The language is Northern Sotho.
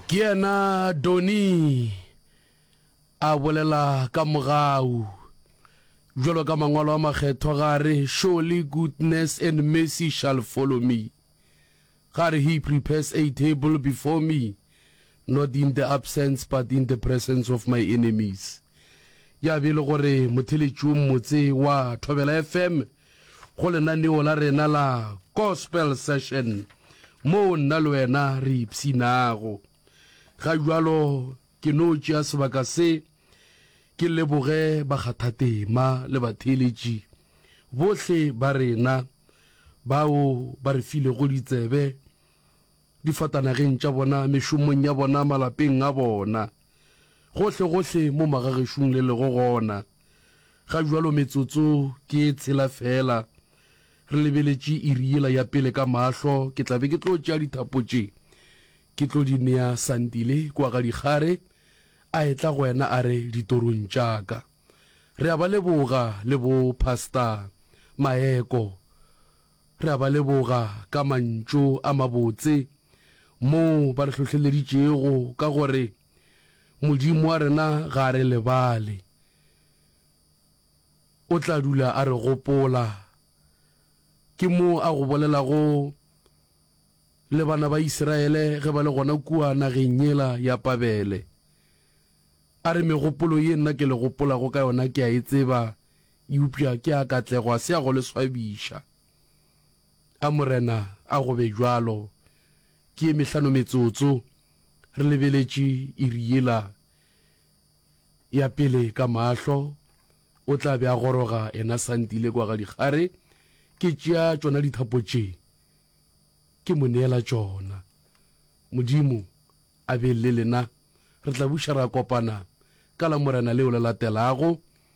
ke yena doni a bolela ka mogau jalo ka mangwalo a makgethwa gare surely goodness and mercy shall follow me gare he prepares a table before me not in the absence but in the presence of my enemies ya be e le gore motheletšong motse wa thobela fm go lenaneo la rena la Gospel Session moo nna le wena re ipshinago. Ga jalo ke no tšea sebaka se ke leboge bakgathatema le batheeletši bohle ba rena bao ba re filego ditsebe difatanageng tša bona, mešomong ya bona, malapeng a bona, gohlegohle mo magagešung le lego gona ga bjalo. Metsotso ke e tshela feela re lebeletše iri yela ya pele ka mahlo, ke tla be ke tlo tšea dithapo tše ke tlo di nea Sandile kua ga dikgare, a etla go wena a re ditorong tša ka. Re a ba leboga le bo Pastor Maeko. Re a ba leboga ka mantšu a mabotse moo ba re hlohleleditšego ka gore Modimo wa rena ga a re lebale. O tla dula a re gopola. Ke mo a go bolelago le bana ba Isiraele ge ba le gona kua nageng yela ya Pabele. A re, Megopolo ye nna ke le gopolago ka yona ke a e tseba, Eupša ke a katlego, a se a go le swabiša. A Morena a go be bjalo. Ke ye mehlano metsotso re lebeletše iri yela ya pele ka mahlo, o tla be a goroga ena sa ntile kwa ga dikgare, ke tšea tšona dithapo tše, ke mo neela tšona. Modimo a be le lena. Re tla buša ra kopana ka Lamorena leo le latelago.